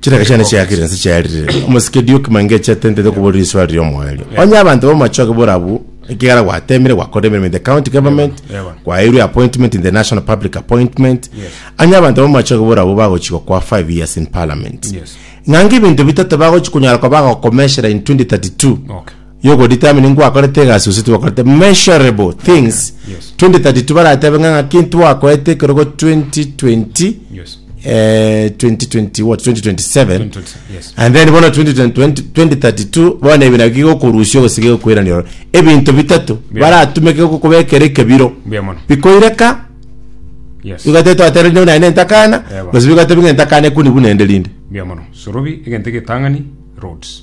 Chiraka chiane chiakire nse chiarire. Omosike Duke Mangei chiatentete okobora risoa ria omoerio. Onye abanto b'amachoge borabu ekegara gwatemire gwakora emeremo in the county government, Ewa. kwaeirwe appointment in the national public appointment. Yes. Onye abanto b'amachoge borabu bagochigwa kwa 5 years in parliament. Yes. Ng'anga ebinto bitato bagochi konyara koba bagokomeshera in 2032. Okay. You go determine ngwakorete egasi gose tiwakorete measurable things Yes. 2032 baratebe ng'a ng'aki ntwakoete ekerogo 2020 Yes. eh, 2020 what 2027 2020, yes. and then bono 2020 2032 bono ebi nabio gigokorusia ogosiga egokoirania oro ebinto bitato Yeah. baratumeke gokobekera ekebiro Mbuya mono. bikoireka Yes. bigatete twatera rinde buna entakana Eba. gose bigatete buna entakana ekuni buna ende rinde Mbuya mono. Sorobi egento getang'ani roads.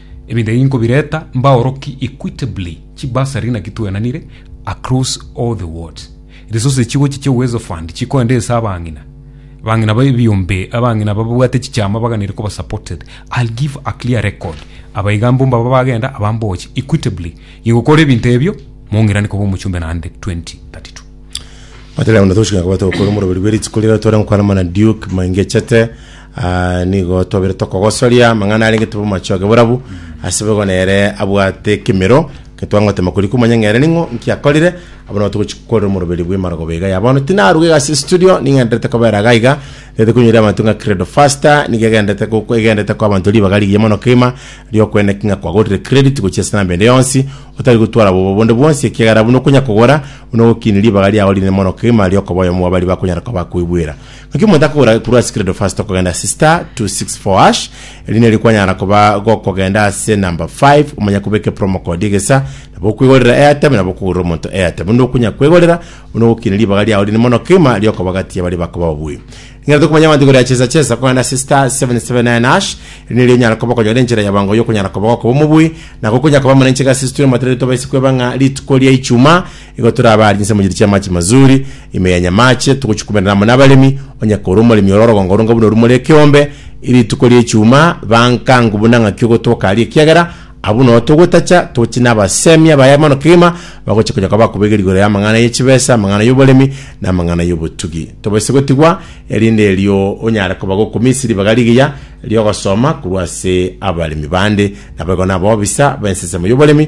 Ebinto ebi nkobireta mbaorokie equitably chibursary naki twenanire across all the wards. Resources chigochia chia Uwezo Fund chikoenda ense abang'ina. Abang'ina ba ebiombe, abang'ina bababwate chichama baganire koba supported. I'll give a clear record. Aba iga mbo mbaba bagenda, aba mboche. Equitably. Ingokora ebinto ebio, mong'irane koba omochumbe naende 2032. Batari abana togochika na kobwata gokora omoroberi bwe rituko riria tware gokwana mana Duke maingechete Aa, nigo twabeire tokogosoria amang'ana arenge tebe omochie oke borabu, ase boigo nere abwate ekemero, getwangotema koria komanya ng'a ere ning'o, nki akorire, abwo nabo togochi korera omoroberi bw'emarogoba iga ya bono. Tinaruga iga ase estudio, ning'enderete kobera iga iga, nete koinyora abanto ng'a Credo Faster, nigo egenderete goko egenderete koa abanto ribaga rigiya mono kegima, riokoenda ki ng'a kwagorire credit gochia ase enamba ende yonsi, otari gotwara obobe bonde bwonsi, ekiagera buna okonya kogora, buna ogokini ribaga riago rinene mono kegima riokoba oyomo bwa baria bakonyara koa bakoigwera. Naki omonto akogora ekurwa ase credo first okogenda ase star 264 erinde erio kwanyara koba gokogenda ase number 5 omanya kobeka promo code egesa nabo okwegorera airtime nabo okogorera omonto airtime onde okonya kwegorera onde ogokina ribaga riao rinde mono kegima riokoba gati yabaria bakoba babui Ning'ana tokomanya abanto igoro ya chesa chesa kogenda ase star 779 hash erinde erio onyara koba okonyora enchera ya bango yokonyara koba gokoba omobui na gokonya koba muna enchega ase situri amatere tobaise kweba ng'a rituko ria ichuma Igo tore abaaria inse mochieri chi'amaache mazuri, ime ya nyamaache, togochikumerana amo nabaremi, onye korwa omoremi ore orogongo rong'o buna orumore ekeombe, rituko ri'echiuma, bankangu buna ng'aki ogotoka aria, ekiagera abwo nao togotacha, toche nabasemia baye mono kegima, bagochia konya koba akoba igoro igoro y'amang'ana ye chibesa, amang'ana y'oboremi, na amang'ana y'obotugi. Tobaise gotigwa, erinde erio onyare koba gokumisa ribaga rigiya ri'ogosoma korwa ase abaremi bande, naboigo naboo bisa b'ensesemo y'oboremi,